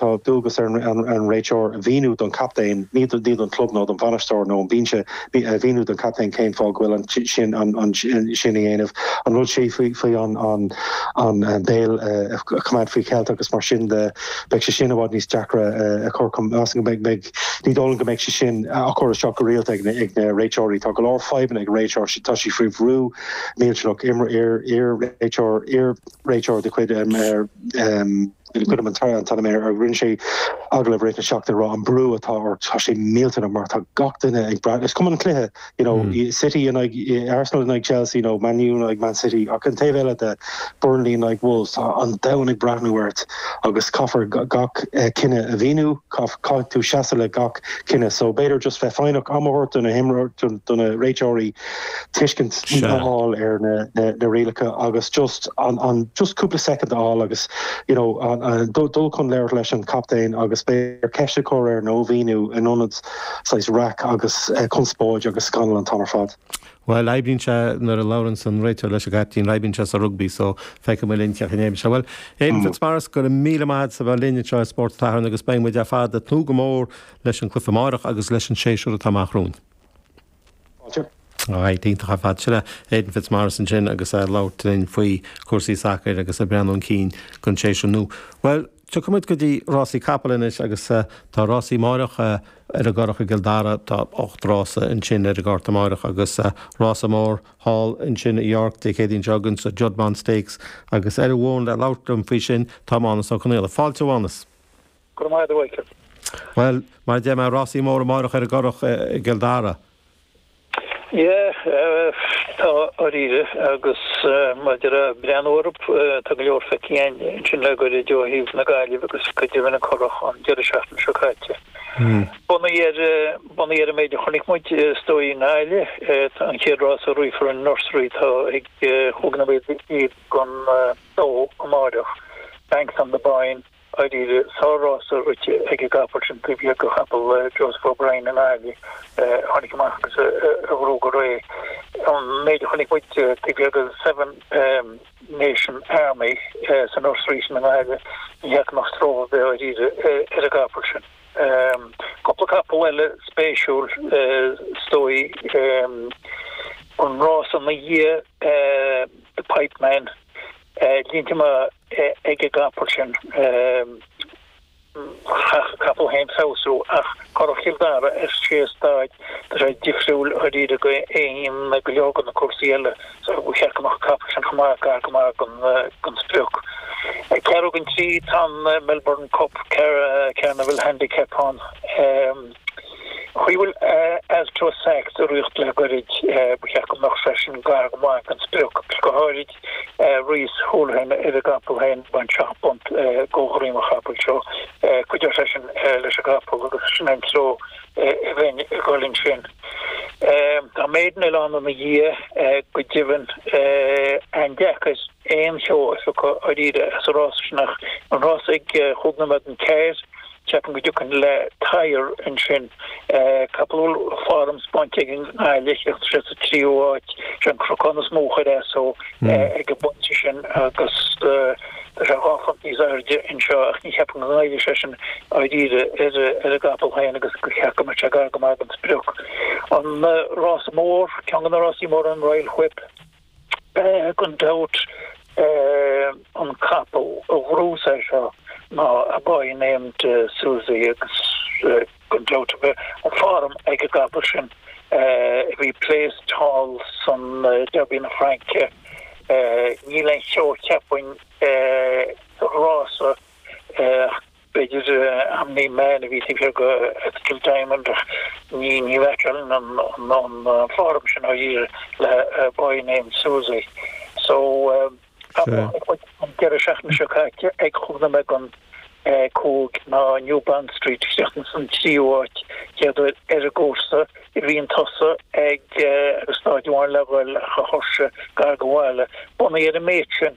Tá dualgas ar an réiteoir a mhíniú don chaptaen, ní don chlub nó don bhainisteoir nó an binse, a mhíniú don chaptaen cén fáth go bhfuil sin ansin a dhéanamh, an rud seo faoi an béal a choimeád faoi cheilt agus mar sin de beidh sé sin i bhfad níos deacra a chur chun feidhme. Ní dóigh liom go mbeidh sé sin á chur isteach go rialta ag na réiteoirí. Tá go leor fadhbanna ag an réiteoir, tá sé faoi bhrú millteanach, iar-réiteoir de chuid. Gabhaim an t-aon t-ainm air, rinne sé agallamh i rith na seachtaine ag rá an brú atá ort, tá sé millteanach mar tá gach duine ag brath, is cuma an cluiche, you know, City in aghaidh Arsenal in aghaidh Chelsea nó Man U in aghaidh Man City ach an taobh eile de, Burnley in aghaidh Wolves, tá an domhan ag breathnú ort agus caithfear gach cinneadh a mhíniú, caithfidh tú seasamh le gach cinneadh so b'fhéidir just bheith foighneach, am a thabhairt do na réiteoirí, tuiscint a fháil ar na rialacha agus just cúpla soicind a fháil agus you know dul chun labhartha leis an chaptaen agus b'fhéidir ceist a chur air nó mhíniú in ionad saghas raic agus conspóid agus scannal an t-am ar fad. Bhuel, oibríonn sé, nuair a labhraíonns an réiteoir leis an gcaptaen, oibríonn sé sa rugbaí, so feicfidh muid linn cén chaoi a n-éiríonn leis. Bhuel, Aidan Fitzmaurice, go raibh míle maith agat as a bheith linn anseo i Spórt an tSathairn agus beidh muid ar fad ag tnúth go mór leis an gcluiche amárach agus leis an séasúr atá amach romhainn. Fáilte. Aye, iontach ar fad. Sin é Aidan Fitzmaurice ansin agus é ag labhairt linn faoi chúrsaí sacair agus ag breathnú chun cinn don séasúr nua. Bhuel, tiocfaidh muid go dtí rásaí capall anois agus tá rásaí amáireach ar an gCurrach i gCill Dara. Tá ocht rása ansin ar an gcárta amáireach agus rása mór thall ansin i York Dé Céadaoin seo chugainn, sa Juddmonte Stakes, agus ar an bhfón le labhairt liom faoi sin tá Mánus Ó Conghaile. Fáilte, a Mhánus. Go raibh maith agat a Mhichíl. Bhuel, mar a deir mé, rásaí móra amáireach ar an gCurrach i gCill Dara. Yeah, tá dáiríre, agus maidir le breathnú orthu, tá go leor feicthe again ansin le goirid ó thaobh na Gaillimhe agus go deimhin an Currach an deireadh seachtaine seo caite. Bunaithe ar, bunaithe ar an méid a chonaic muid is dóigh i nGaillimh, tá an chéad rása a rithfear an nursery, tá ag Hogan O'Malley iad gan dó amáireach, Banks of the Boyne, Dháiríre, sár-rása rite ag an gcapall sin taobh thiar de chapall Joseph O'Brien i nGaillimh a tháinig amach agus a ghnóthaigh go réidh. An méid a chonaic muid taobh thiar de Seven Nation Army san Nursery sin i nGaillimh, ní fhaca mé aon stró ar bith dháiríre ar an gcapall sin. Cúpla capall eile spéisiúil is dóigh, an rása ina dhiaidh, The Pipeman, línte maithe. ag an gcapall sin. Caithfidh an capall féin feabhsú ach Currach Chill Dara ar sé staid tá sé difriúil dháiríre go 1 ag go leor de na cúrsaí eile so ba cheart go mbeadh an capall sin chomh maith gar go maith don sprioc. Ag ceathrú don trí, tá an Melbourne Cup Carnival Handicap ann. Chaoi a bhfuil Astro Sax ag ritheacht le goirid, ba cheart go mbeadh seisean gar go maith ag an sprioc, agus go háirid Reese Holohan ar an gcapall féin, baineann seacht bpunt de dhroim an chapaill seo. Cuideoidh sé sin leis an gcapall agus sin an treo a bheinn ag dhul ansin. Tá maiden eile ann ina dhiaidh go deimhin. An-deacair aon cheo a phiocadh dáiríre as an rás sin ach an rás ag cúig nóiméad don ceathair, Ceapaim go dtiocfainn le Tyre ansin. Capall a bhfuil form spáinte aige i nGaillimh, chríochnaigh sé sa tríú háit. Sé an cnocán is mó a chuir as dó ag an bpointe sin agus tá sé dhá phunt níos airde anseo ach ní cheapaim go ngoillfidh sé sin dáiríre ar an gcapall féin agus go mba cheart go mbeadh sé gar go maith don sprioc. An Rás Mór, Ceann de na Rásaí Móra, an Royal Whip. Gan dabht, an capall a ghnóthós é seo ná a boy named Susie agus gan dabht a bheith an form ag an gcapall sin a bhí placed thall san Derby na Fraince. Níl aon cheo cheapfainn sa rása ach. B'fhéidir Omni Man a bhí taobh thiar de Ethical Diamond ach ní fheicim an form sin dáiríre le A Boy Named Susie so an deireadh seachtaine seo caite ag cúig nóiméad don 5 ná New Bond Street isteach ins an tríú háit. Chéad uair ar an gcúrsa. Bhí chun tosaigh ag staid amháin le dhul ach thuirsigh gar don bhaile. Bunaithe ar an méid sin.